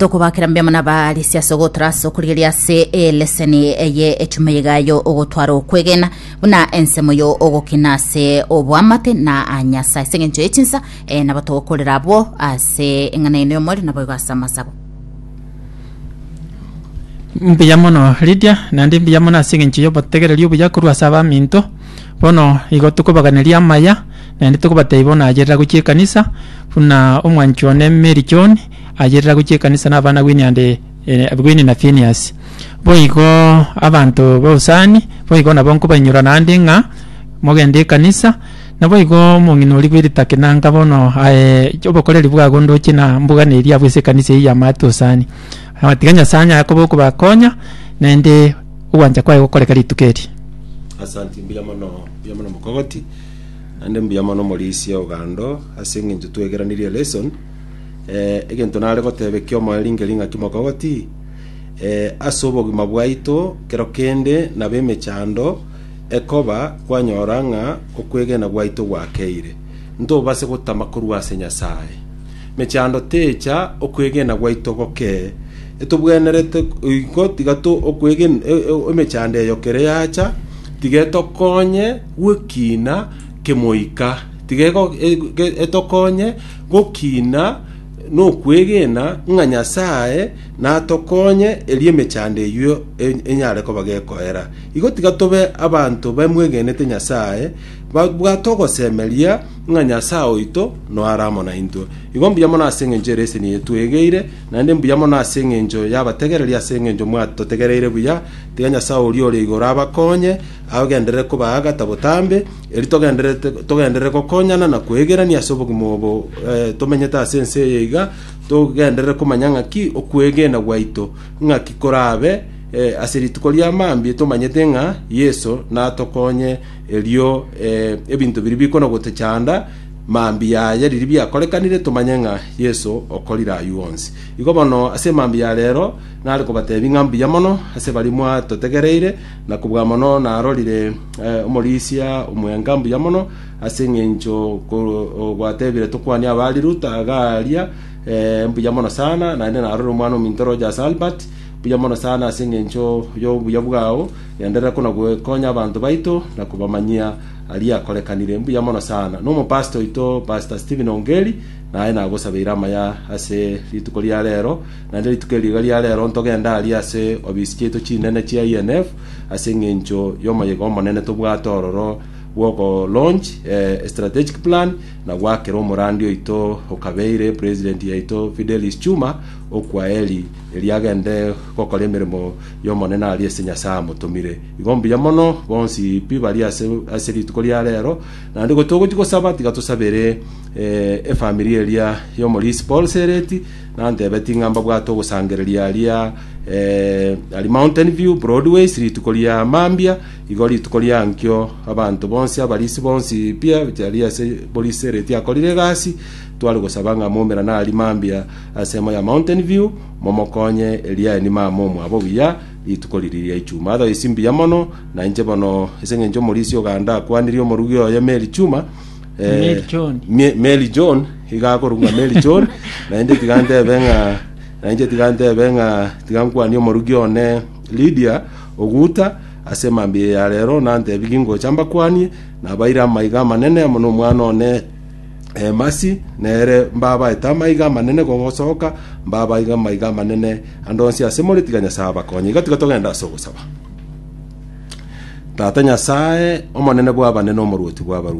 tokobakera mbe muna baali siase ogotorasa okorigeria ase eleseni eye etume yigayo ogotwara okwegena buna ensemo yo ogokina ase obwamate na a nyasaye ase eng'encho yechinsa eh, nabo togokorera abwo ase eng'ana eno y'omweri naboigo ase amasabo mbuya mono Lydia naende mbuya mono ase eng'encho y'obotegereri obuya korwa ase abaminto Bono igo tokobaganeria amaya, naende tokobatebia bono agerera gochia ekanisa, buna omwanchi one Mary John agerera gochia ekanisa na abana Winnie and Winnie na Phineas. Boigo abanto b'Usani boigo nabo nkobainyorwa naende ng'a mogende ekanisa, naboigo omong'ina oria bw'eritake nanka bono aye obokoreri bwago ndoche na mbugana eria abwo ase ekanisa eyio ya Maate Usani. Na batiga Nyasae onye akoba okobakonya, naende ogwancha kwaye gokoreka rituko eri. Asanti mbuya mono mbuya mono mokogoti naende mbuya mono morisia ogando ase eng'encho twegeranirie lesson eh, egento nare goteba ekiomo eringe ring'aki mokogoti eh, ase obogima bwaito kero kende na bemechando ekoba kwanyora ng'a okwegena gwaito gwakeire ntobase gotama korwa ase Nyasaye Mechando teecha okwegena gwaito gokee. Etobwenerete oiko tiga emechando eyo kere yacha, tiga etokonye gwekina kemoika, tiga etokonye gokina nokwegena ng'a Nyasae natokonye erio emechando eyio enyare koba gekoera. Igo tiga tobe abanto bamwegenete Nyasae, Babwate ogosemeria ng'a Nyasae oito noare amo naintwe. Igo mbuya mono ase engencho ere eseni eye twegeire, naende mbuya mono ase engencho y'abategereri ase engencho mwatotegereire buya. Tiga Nyasae oria ore igoro abakonye, agenderere kobaagata botambe, erio togendererete togenderere gokonyana na kwegerania ase obogima obo tomenyete ase ense eye iga, togenderere komanya ng'aki okwegena gwaito ng'aki korabe ase rituko ria mambia tomanyete ng'a Yeso natokonye Erio ebinto biria bikona gotechanda, mambia aye riria biakorekanire, tomanye ng'a Yeso okorire ayio onsi. Igo bono ase mambia ya reero nare kobateebia ng'a mbuya mono ase baria mwatotegereire, na kobua mono narorire omorisia omwenga mbuya mono, ase engencho gwateebire tokwanie abaari Luta iga aaria, mbuya mono sana, naende narorire omwana ominto roche ase Albert, mbuya mono sana ase engencho y'obuya bwao. Genderera kona gokonya abanto baito na kobamanyia aria akorekanire. Mbuya mono sana. Nomopastor oito Pastor Steven Ongeri naye nagosabeire amaya ase rituko ria rero. Naende rituko eri iga ria rero ntogende aria ase obisi chiaito chinene chia INF ase eng'encho y'omoyega omonene tobwate ororo bw'ogo launch a strategic plan na goakera omorandi oito okabeire president yaito Fidelis Chuma okwa Eli erio agende gokora emeremo y'Omonene aria ase Nyasae amotomire. Igo mbuya mono, bonsi pi bari ase ase rituko ria reero, na nde gotogochia gosaba, tiga tosabere eh, efamiri eria y'omorisi Paul Sereti, nantebeti ng'a mbabwate ogosangereria aria eh, ari Mountain View, Broadways, rituko ria mambia, igo rituko ria nkio abanto bonsi, abarisi bonsi pi abari ase borisi Sereti akorire egasi, tware gosaba ng'a moumerane aria mambia ase emo ya Mountain View, Momokonye Eliani mama omwabo buya rituko riria ria Ichuma. Adha isi mbuya mono na inche bono, ase engencho omorisia o Ganda akwanirie omorugi oye Mary Chuma, eh, Mary John. Mie- Mary John, iga akorokwa Mary John, na inche tiga ntebe ng'a na inche tiga ntebe ng'a tiga nkwanie omorugi one Lydia Oguta ase mambia ya rero, nantebie gingocha mbakwanie, nabaire amaiga amanene amo nomwana one Emasi, nere mbabaete amaiga amanene gosoka, mbabaige amaiga amanene ande onsi ase more, tiga Nyasae abakonye. Igo tiga togende ase ogosaba. Tata Nyasae, Omonene bw'abanene, Omorwoti bw'abarwoti.